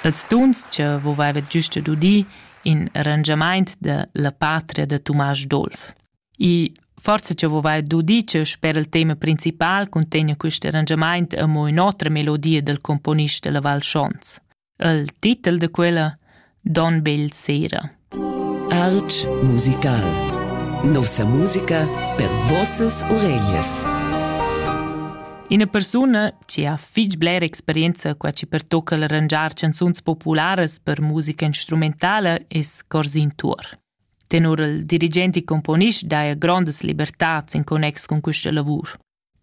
Els dunschia vovaivat güst dudi in arrangiamaint da la patria da Tumasch Dolf. I forsa cha vovaivat dudi cha sper il tema principal cuntegna quist arrangiamaint amo ün'otra melodia dal componist da la Val Schons. Il titel da quella Don Bel sera. Alch musical. Nossa musica per vossas oreglias. Ina persuna che ha fitg blera experienza qua ci pertocca l'arrangiar canzuns popularas per musica instrumentala es Corsin Tuor. Tenor il dirigent e componist daja grondas libertats in connex con questa lavur.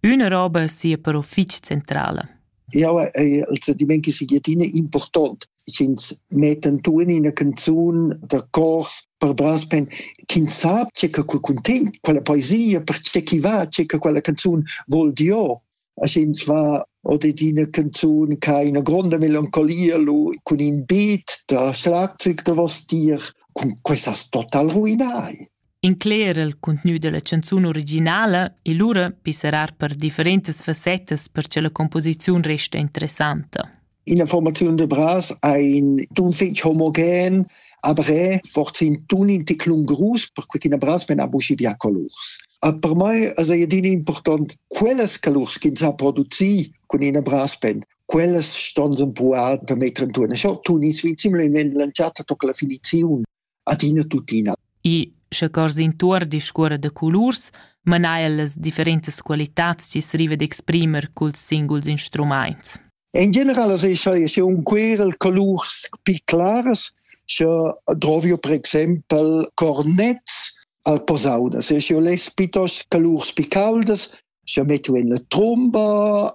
Üna roba sia però fich centrala. Jau ei il sentiment che sia adina important. Ins meten tun in canzun da cors per brass pen ch'ins sa che che cuntin quella poesia per che chi va che che quella canzun vol dio. As ins va od ina canzun che ha ina gronda melancolia lu cun in beat da schlagzeug da vos dir cun questa total ruinai. incler il contgnü della canzun originala e lura pisserar per differentas fassettas per che la composiziun resta interessanta. In informaziun de Bras ein d'un fetg homogen, aber fortin tun in ticlun grus per quei ch'ina Bras men ha buci bia colurs. A per mai es ei adina important quellas calurs ch'ins ha produci cun ina brassband. Quellas ston sen puar da metter en turna. Scho tun is vi similmente lanciata toca la finizione. adina tuttina. E sche cors intuor discuorra da colurs, mana el las differentas qualitads chi s'riva d'exprimer culs singuls instrumaints. In general as escha se un querel colurs pi claras, sche drovio per exempel cornets al posaudas, e sche les pitos colurs pi caldas, sche metto en la tromba